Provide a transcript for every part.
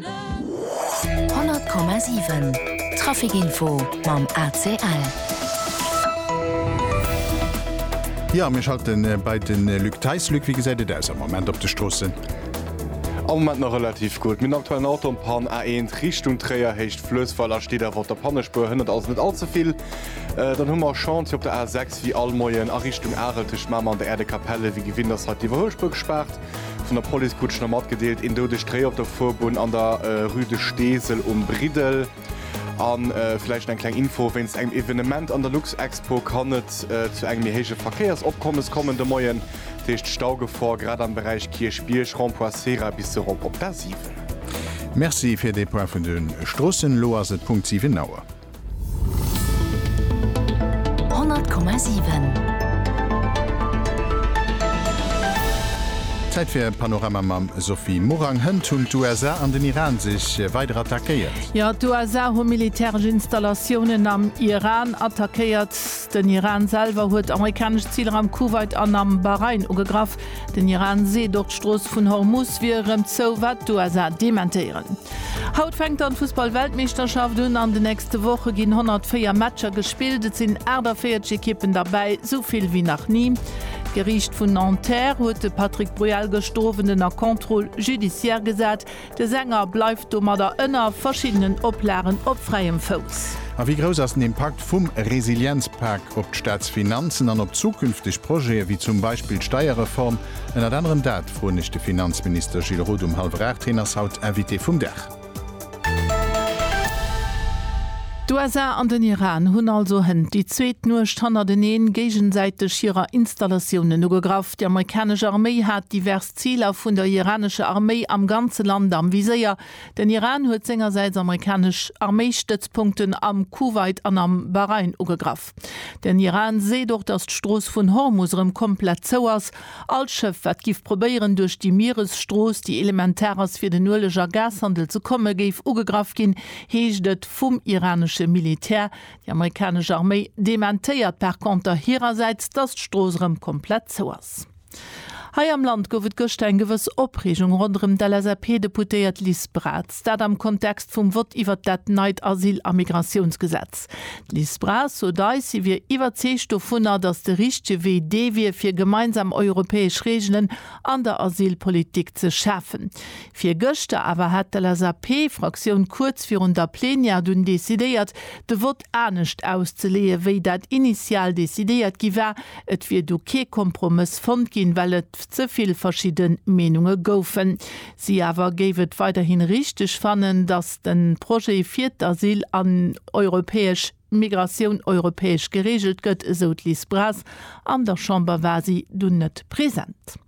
100,7 Trafic Info mam ACL. Jo mir schalten bei de Luc Theis. Luc, wéi gesäit et aus am Moment op de Stroossen? Am Moment nach relativ gutt. Mir hunn aktuell en Auto an Pann, A1 Richtung Tréier, Héicht Fluessweiler, steet awer op der Pannespuer, hënnert also net all ze vill. Dann hu mer Chantier op der A6 wéi all Moien a Richtung Arel tëscht Mamer an der Äerdekapell. Ewéi gewinnt ass hei d'Iwwerhuelspuer gespaart. Vun der Police krut ech nach matgedeelt, een doudegt Réi op der Fuerbunn an der Rue de Steesel um Briddel. A vläicht eng kleng Info, Wéinst engem Evenement an der Luxexpo kann et zu engem méi héije Verkéiersopkommes kommen de Moien. Dat heescht Staugefor grad am Beräich Kierchbierg, Rond-point Cera bis erop op d'A7. Merci fir dee Point vun de Stroossen. Elo ass et Punkt 7 Auer. Zäit fir e Panorama mam Sophie Morang. Hënt hunn d'USA an den Iran sech weider attackéiert. Jo, d'USA hu militäresch Installatiounen am Iran attackéiert. Den Iran selwer huet amerikanesch Ziler am Kuwait an am Bahrain ugegraff. Den Iran seet och d'Strooss vun Hormuz wier erëm zou, wat d'USA dementéieren. Haut fänkt dann d'Fussball-Weltmeeschterschaft un. An de nächste Woche ginn 104 Matcher gespillt. Et sinn 48 Ekippen derbäi, sou vill wéi nach ni. D'Geriicht vun Nanterre huet de Patrick Bruel gëschter Owend ënner Contrôle judiciaire gesat. De Sänger bleift domadder ënner verschiddenen Oplagen op fräiem Fouss. A wéi grouss ass den Impakt vum Resilienzpak op d'Staatsfinanzen an op zukünfteg Projete wéi zum Beispill d'Steierreform? Ënnert anerem dat froen ech de Finanzminister Gilles Roth um hallwer 8. Heen ass haut Invité vum Dag. D'USA an den Iran hunn also hënt déi zweet Nuecht hannerteneen géigesäiteg hirer Installatiounen ugegraff. Déi amerikanesch Arméi hat divers. Ziler vun der iranescher Arméi am ganze Land am Viséier, Den Iran huet sengersäits amerikanesch Arméistëtzpunkten am Kuwait an am Bahrain ugegraff. Den Iran seet och, datt d'Strooss vun Hormus erëm komplett zou ass. All Schëff, wat giff probéieren, duerch déi Mieresstrooss, déi elementar ass fir den Ueleg a Gashandel ze kommen, géif ugegraff ginn, heescht et vum iranesche Militär. Déi amerikanesch Arméi dementéiert par konter hirersäits, datt d'Strooss erëm komplett zou ass. Hei am Land gouf et gëschter eng gewëss Opreegung ronderëm d'LSAP-Deputéiert Liz Braz. Dat am Kontext vum Vott iwwert dat neit Asyl a Migratiounsgesetz. D'Liz Braz sot eis, si wier iwwerzeegt dovunner, datt de richtege Wee dee wier, fir gemeinsam europäesch Reegelen an der Asylpolitik ze schafen. Virgëschter awer hat d'LSAP-Fraktioun kuerz virun der Plenière dunn decidéiert, de Vott anescht auszeleeë wéi dat initial decidéiert gi war. Et wier do kee Kompromëss fonnt ginn, well et ze vill verschidde Meenunge goufen. Si awer géif et weiderhin richteg fannen, datt de Projet fir d'Asyl an europäesch Migratioun europäesch gereegelt gëtt, esou d'Liz Braz. An der Chamber war si dunn net present.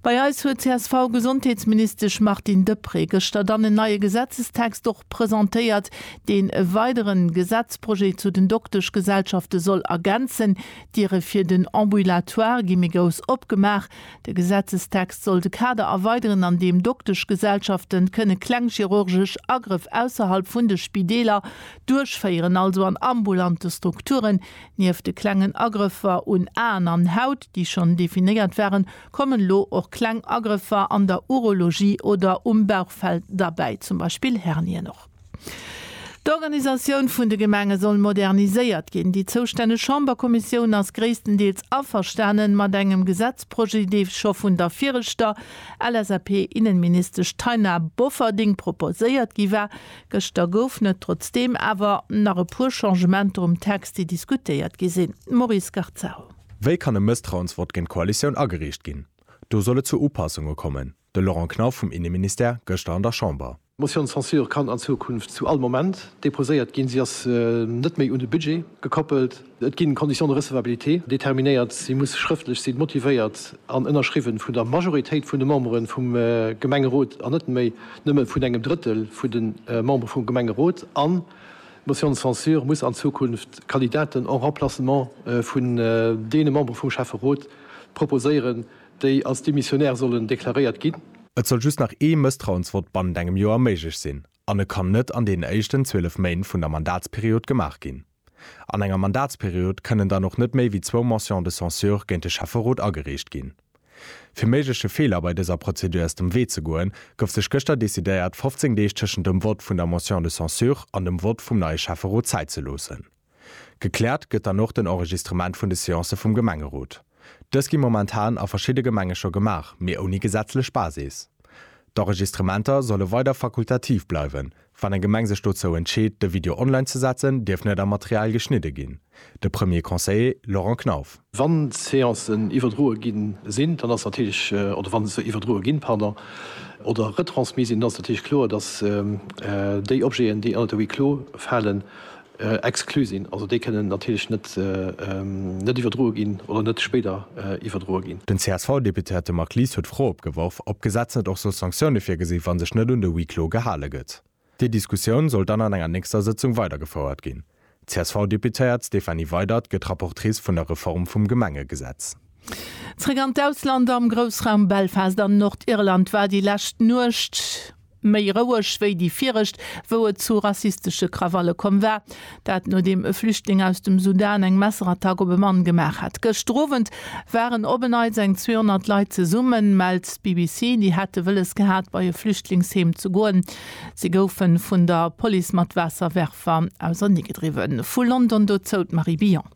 Bei eis huet d'CSV-Gesondheetsministesch Martine Deprez gëschter dann en neie Gesetzestext och presentéiert, deen e weidere Gesetzprojet zu den Dokteschgesellschafte soll ergänzen. D'Diere fir den Ambulatoire gi méi grouss opgemaach. De Gesetzestext soll de Kader erweideren, an deem Dokteschgesellschafte kënne kleng chirurgesch Agrëff ausserhalb vun de Spideeler duerchféieren, also an ambulante Strukturen, Nieft de klengen Agrëffer un Aen an Haut, déi schonn definéiert waren, kommen elo och kleng Agrëffer an der Urologie oder um Bauchfell derbäi, zum Beispill Hernien. Och d'Organisatioun vun de Gemenge soll moderniséiert ginn. Déi zoustänneg Chamberkommissioun ass gréisstendeels averstane mat engem Gesetzprojet, dee scho vun der viregter LSAP-Innenministesch Taina Bofferding proposéiert gi war, Gëschter goufen et trotzdeem awer nach e puer Changementer um Text, déi diskutéiert gi sinn. Maurice Garzaro. Wéi kann e Mësstrauensvott géint d'Koalitioun ageriicht ginn? Do soll et zu Upassunge kommen, de Laurent Knauf vum Inneministère gëschter an der Chamber. D'Motion de censure kann an Zukunft zu all Moment deposéiert ginn. Si ass net méi un de Budget gekoppelt. Et ginn Conditions de recevabilité determinéiert, si muss schrëftlech sinn, motivéiert an ënnerschriwwen vun der Majoritéit vun de Memberen vum Gemengerot an net méi nëmmen vun engem Drëttel vun den Memberen vum Gemengerot an d'Motion de censure muss an Zukunft Kandidaten en remplacement vun deene Memberen vum Schäfferot proposéieren, déi als démissionnaire sollen deklaréiert ginn. Et soll just nach ee Mësstrauensvott bannent engem Joer méiglech sinn an e kann net an deenen éischten 12 Méint vun der Mandatsperiod gemaach ginn. An enger Mandatsperiod kënnen dann och net méi wéi zwou Motions de censure géint de Schäfferot agereecht ginn. Fir méigleche Feeler bei dëser Prozedur aus dem Wee ze goen, gouf sech gëschter decidéiert, 15 Deeg tëschent dem Vott vun der Motion de censure an dem Vott vum neie Schäfferot Zäit ze loossen. Gekläert gëtt dann och den Enregistrement vun de Seancë vum Gemengerot. Dës gi momentan a verschidde Gemenge scho gemaach, mee ouni gesetzlech Basis. D'Enregistrementer solle weider fakultativ bleiwen, Wann eng Gemeng sech dozou entscheet, de Video online ze setzen, dierf net am Material geschnidde ginn, de Premier Conseiller Laurent Knauf. Wann Seancen iwwerdroe gi sinn, dann ass natierlech, oder wann se iwwerdroe ginn, pardon, oder retransmis sinn, dann ass natierlech kloer, dass déi Objeten, déi ënnert de Huis clos falen, Exklu sinn. Also déi kënnen natierlech net net iwwerdroe ginn oder net spéider iwwerdroe ginn. Den CSV-Deputéierte Marc Lies huet d'Fro opgeworf, ob d'Gesetz net och soll Sanktioune virgesinn, wa sech net un de Huis clos gehale gëtt. Déi Diskussioun soll dann an enger nächster Sëtzung weidergefouert ginn. D'CSV-Deputéiert Stéphanie Weydert gëtt Rapportrice vun der Reform vum Gemengegesetz. Zeréck an d'Ausland, Am Groussraum Belfast an Nordirland war déi lescht Nuecht, Méi roueg wéi déi viregt, wou et zu rassistesche Krawalle komm war. Dat nodeem e Flüchtling aus dem Sudan eng Messerattack op e Mann gemaach hat. Gëschter Owend waren op e Neits eng 200 Leit zesummen, mellt d'BBC. Déi hätte wëlles gehat, bei e Flüchtlingsheem ze goen. Si goufe vun der Police mat Waasserwerfer ausernegedriwwen. Vu London dozou d'Marie Billon.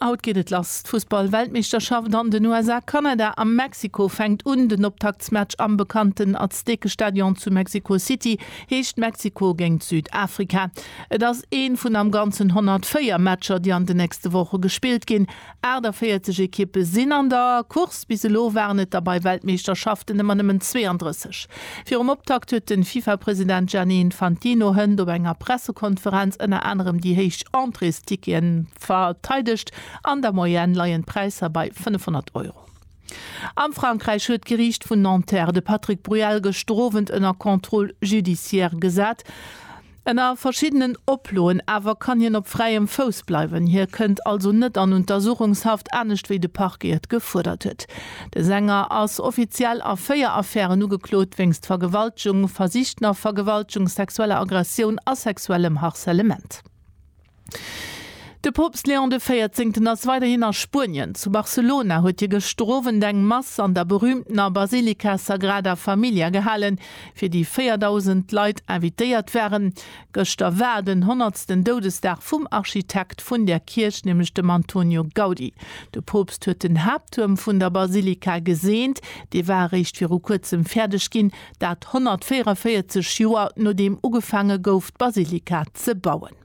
Haut geet et lass, d'Fussball-Weltmeeschterschaft an den USA, Kanada a Mexiko fänkt un. Den Optaktsmatch am bekannten Aztekestadion zu Mexico City heescht Mexiko géingt Südafrika. Et ass ee vun am Ganzen 104 Matcher, déi an den nächste Woche gespillt ginn. 48 Ekippe sinn an der Course, bis elo waren et der bei Weltmeeschterschaften ëmmer nëmmen 32. Virum Optakt huet de FIFA-President Gianni Infantino hënt op enger Pressekonferenz ënner anerem déi héich Entréestickete Verteidegt. An der Moyenne leien d'Präisser bei 500 Euro. Am Frankräich huet d'Geriicht vun Nanterre de Patrick Bruel gëschter Owend ënner Contrôle judiciaire gesat. Ënner verschiddenen Oploen awer kann hien op fräiem Fouss bleiwen. Hie kënnt also net an Untersuchungshaft, anescht wéi de Parquet et gefuerdert huet. De Sänger ass offiziell a véier Affären ugeklot, wéinst Vergewaltegung, versichter Vergewaltegung, sexueller Aggressioun a sexuellem Harcèlement. De Poopst Léon de Véierzéngten ass weiderhin a Spuenien. Zu Barcelona huet hie gëschter Owend eng Mass an der berüümtener Basilika Sagrada Familia gehalen, fir déi 4.000 Leit invitéiert waren. Gëschter war den honnertsten Doudesdag vum Architekt vun där Kierch, nämlech dem Antonio Gaudi. De Poopst huet den Haapttuerm vun der Basilika geseent. Dee war eréischt viru kuerzem fäerdeg ginn, dat 144 Joer nodeem ugefaange gouf d'Basilika ze bauen.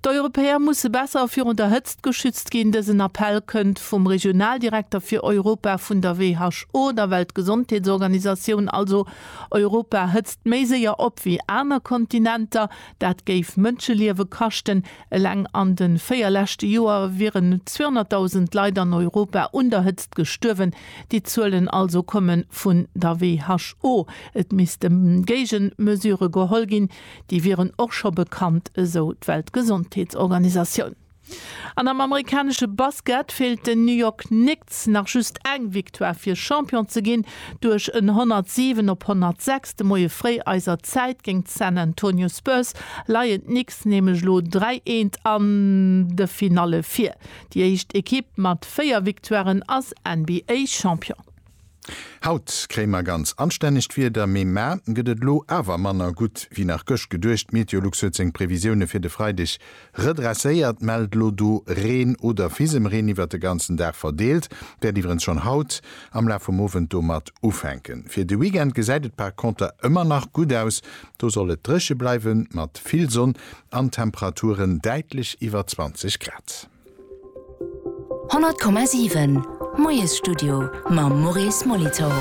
D'Europäer musse besser virun der Hëtzt geschützt ginn. Dësen Appell kënnt vum Regionaldirekter fir Europa vun der WHO, der Weltgesondheetsorganisatioun. Also Europa hëtzt méi séier op wéi aner Kontinenter. Dat géif Mënscheliewe kaschten. Eleng an de véier leschte Joer wieren 200.000 Leit an Europa un der Hëtzt gestuerwen. Déi Zuelen also komme vun der WHO. Et misste Géigemesure geholl ginn. Déi wieren och scho bekannt, esou d'Weltgesondheetsorganisatioun. An am amerikanesche Basket feelt den New York Knicks nach just eng Victoire fir Champion ze ginn. Duerch en 107 op 106 de Moie fréi eiser Zäit géint d'San Antonio Spurs leien d'Knicks nämlech elo 3 Eent an de Finalle vir. Déi éischt Ekipp mat 4 Victoiren ass NBA-Champion. Haut kréie mer ganz anstännegt Wieder, mee ma gëtt et elo awer manner gutt wéi nach gëscht geduecht. D'Meteolux huet seng Previsioune fir de Freideg redresséiert, mellt elo do Reen oder Fisemreen iwwert de ganzen Dag verdeelt, wäert iwwerens schonn haut am Laf vum Owend domat ufänken. Fir de Weekend gesäit et par Konter ëmmer nach gutt aus, do soll et dréche bleiwen, mat vill Sonn an Temperaturen däitlech iwwer 20 Grad. 100,7 Moiesstudio mam Maurice Molitor.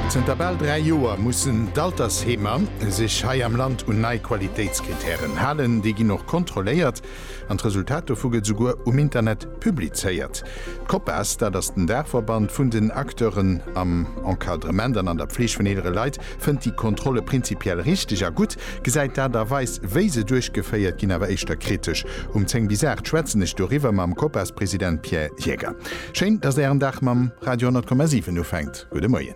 Zënter bal dräi Joer mussen d'Altersheemer sech hei am Land un nei Qualitéitskrittären halen. Déi ginn och kontrolléiert an d'Resultat dovu gëtt esouguer um Internet publizéiert. D'Copas, dat ass den Daachverband vun den Acteuren am Encadrement an an der Pfleeg vun eelere Leit, fënnt déi Kontrolle prinzipiell richteg a gutt, gesäit d'Aart a Weis, wéi se duerchgeféiert ginn, awer éischter kritesch. Um 10 bis 8 schwätzen ech doriwwer mam Copas-President Pierre Jäger. Schéin, datt Ären Dag mam Radio 10,7 ufänkt. Gudde Moien.